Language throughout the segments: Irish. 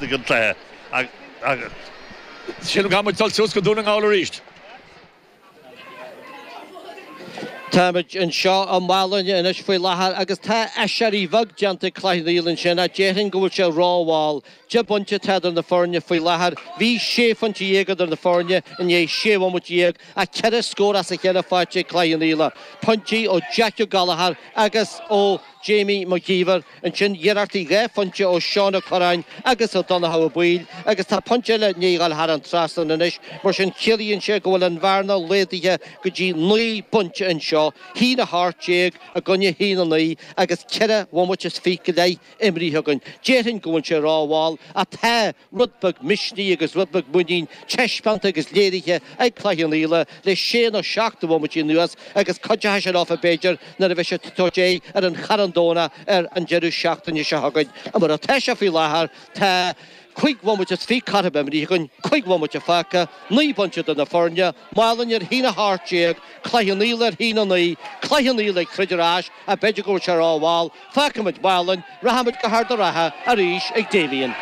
ag an gcluiche agus sílim go chaithfidh muid dul suas go Dún na nGall arís. Táimid anseo i Málainn anois faoi láthair agus tá aiséirí bheag déanta ag Cloich Cheann Fhaola ansin ach déarfainn go bhfuil sé rómhall. Deich bpointe atá idir na foirne faoi láthair. Bhí sé phointe dhéag idir na foirne i ndiaidh sé bhomaite dhéag ach ceithre scór as a chéile faighte ag Cloich Cheann Fhaola, pointí ó Jack Ó Gallchóir agus ó Jamie McGeever. Ansin iarrachtaí dhá phointe ó Sheán Ó Cuirreáin agus ó Dhonnchadh Ó Baoill agus tá pointe eile i ndiaidh a dhul thar an trasnán anois, mar sin ciallaíonn sé go bhfuil an bhearna laghdaithe go dtí naoi bpointe anseo, a haon a hocht déag i gcoinne a haon a naoi agus ceithre bhomaite is fiche go leith imríthe againn. Déarfainn go bhfuil sé rómhall, ach tá. Rud beag misnigh agus rud beag muinín taispeánta agus léirithe ag Cloich Cheann Fhaola le sé nó seacht de bhomaití anuas agus cuideoidh sin leofa b'fhéidir nuair a bheidh siad ag tabhairt aghaidh ar an Charn Domhnach ar an deireadh seachtaine seo chugainn. Mar atá sé faoi láthair tá cúig bhomaite is fiche caite imrithe againn, cúig bhomaite fágtha, naoi bpointe idir na foirne, Málainn ar a haon a 18, Cloich Cheann Fhaola ar a haon a 9, Cloich Cheann Fhaola ag troid ar ais, ach b'fhéidir go bhfuil sé rómhall, fágfaimid Málainn, rachaimid go hArd an Rátha arís ag Damien.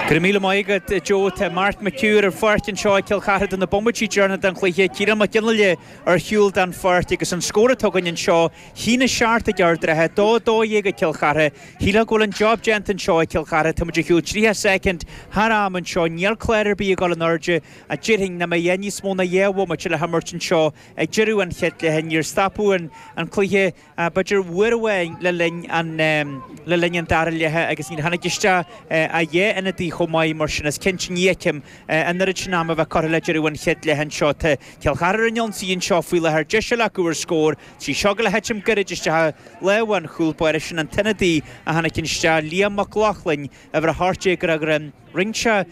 Go raibh míle maith agat a Joe. Tá Mark McHugh ar an pháirc anseo ag Cill Chartha do na bomaití deireanach den chluiche, Ciarán Mac Fhionnaile ar shiúl den pháirc agus an scór atá againn anseo, a haon a seacht ag Ard an Rátha, 2, 12 ag Cill Chartha. Shílfeá go bhfuil an job déanta anseo ag Cill Chartha. Táimid ar shiúl 30 soicind thar am anseo. Níl clár ar bith ag dul in airde. a déarfainn, nach mbeidh níos mó ná dhá bhomaite le himirt anseo ag deireadh an chéad leath. Níor stopadh an cluiche ach b'fhéidir uair amháin le linn an dara leatha agus níor tháinig isteach ach dhá ionadaí chomh maith, mar sin is cinnte ní fheicim an oiread sin ama a bheith curtha le deireadh an chéad leatha anseo. Tá Cill Chartha ar an ionsaí anseo faoi láthair, deis eile acu ar scór, tá seo ag dul a thitim gairid isteach i lámha an chúl báire, sin an t-ionadaí a tháinig isteach, Liam Mac Lochlainn, uimhir a hocht déag ar a dhroim rinne sé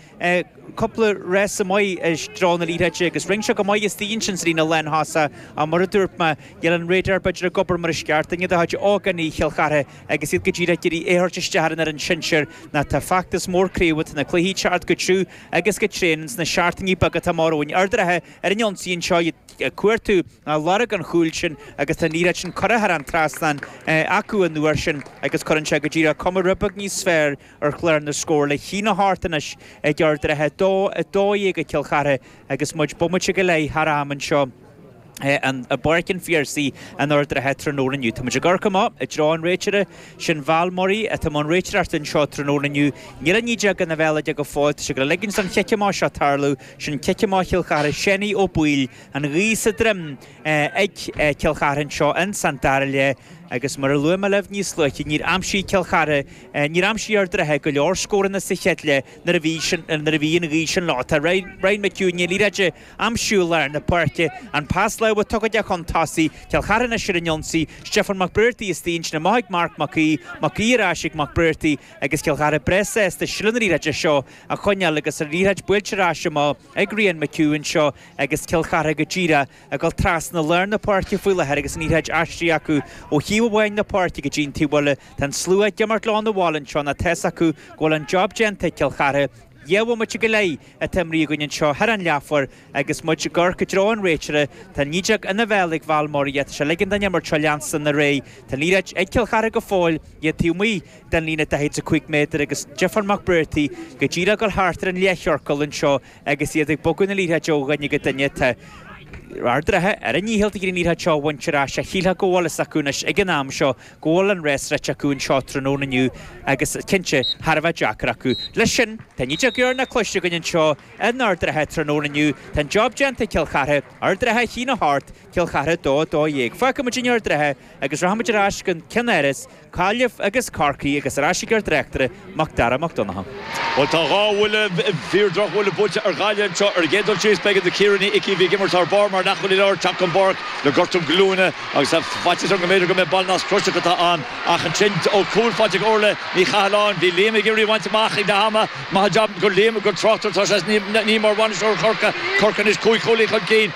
cúpla rás maith i dtreo na liathróide agus rinne sé go maith istigh ansin sa líne lántosaigh ach mar a dúirt mé níl an radar b'fhéidir ag obair mar is ceart inniu do chuid ógánaigh Chill Chartha agus iad go díreach ag iarraidh é a thabhairt isteach ar an fhoireann shinsir ná tá feachtas mór craobh tá na cluichí ag teacht go tiubh agus go tréan ins na seachtainí beaga atá amach romhainn Ard an Rátha ar an ionsaí anseo iad cuartú ná lorg an chúil sin agus tá an liathróid sin curtha thar an trasnán acu an uair sin agus cuireann sé go díreach cuma rud beag níos fearr ar chlár na scór le haon a hocht anois ag Ard an Rátha 2, 12 ag Cill Chartha agus muid bomaite go leith thar am anseo i bPáirc an Phiarsaigh in Ard an Rátha tráthnóna inniu. Táimid ag amharc amach i dtreo an réiteora, sin Val Murray atá i mbun réiteoireachta anseo tráthnóna inniu. Níl an fheadóg ina bhéal aige go fóill, tá sé ag ligean don chic amach seo tarlú, Sin cic amach Chill Chartha Seanie Ó Baoill an ghaoth sa droim ag Cill Chartha anseo insan dara leath agus mar a luaigh mé libh níos luaithe níor aimsigh Cill Chartha níor aimsigh Ard an Rátha go leor scóranna sa chéad leath nuair a bhí nuair a bhí an ghaoth sin leo tá Ryan McHugh i ndiaidh liathróid a aimsiú lár na páirce an pas láimhe tugtha aige chun tosaigh Cill Chartha anois ar an ionsaí Stephen McBrearty is téann sin amach ag Marc Mac Aoidh Mac Aoidh ar ais ag McBrearty agus Cill Chartha breá sásta seilbh na liathróide seo a choinneáil agus an liathróid buailte ar ais amach ag Ryan McHugh anseo agus Cill Chartha go díreach ag dul trasna lár na páirce faoi láthair agus an liathróid aistrithe acu ó thaobh amháin na páirce go dtí an taobh eile. Tá an slua ag imeacht leo 'na bhaile anseo nó tá's acu go bhfuil an job déanta ag Cill Chartha. Dhá bhomaite go leith atá imeartha againn anseo thar an leathuair agus muid ag amharc i dtreo an réiteora. Tá an fhideog ina bhéal ag Val Murray agus tá sé ag ligean don imirt seo leanstan ar aghaidh. Tá an liathróid ag Cill Chartha go fóill, iad taobh amuigh. den líne 45 méadar agus Stephen McBrearty go díreach ag dul thart ar an leathchiorcal anseo agus iad ag bogadh na liathróide ó dhuine go duine. Tá Ard an Rátha ar a ndícheall ag iarraidh an liathróid seo a bhaint ar ais. Ach shílfeá go bhfuil a fhios acu anois ag an am seo go bhfuil an race rite acu anseo tráthnóna inniu agus cinnte thar a bheith deacair acu. Leis sin tá an fhideog dheireanach cloiste againn anseo in Ard an Rátha tráthnóna inniu. Tá an job déanta ag Cill Chartha, Ard an Rátha 1, 8, Cill Chartha 2, 12. Fágfaimid Ard an Rátha agus rachaimid ar ais go ceannáras Gaillimh agus Corcaigh agus ar ais ag ár dtráchtaire, Mac Dara Mac Donncha. Bhuel, tá dhá bhuille, fíor drochbhuille, buailte ar Ghaillimh anseo ar an gcéad dul síos. B'éigean do Chiara Ní Icí a bhí ag imirt thar barr mar leathchúlaí láir teacht den pháirc le gortú glúine agus tá faitíos orm go mb'fhéidir go mb'é an ballnasc croiseach atá ann ach ansin ó cúl faighte ag Orlaith Ní Chathalláin. Bhí Liam ag iarraidh í a bhaint amach ag leath ama. Maith an jab do Liam gur tráchtaire atá sé, is ní mar bhainisteoir Chorcaí, Corcaigh anois, cúig chúilín chun cinn.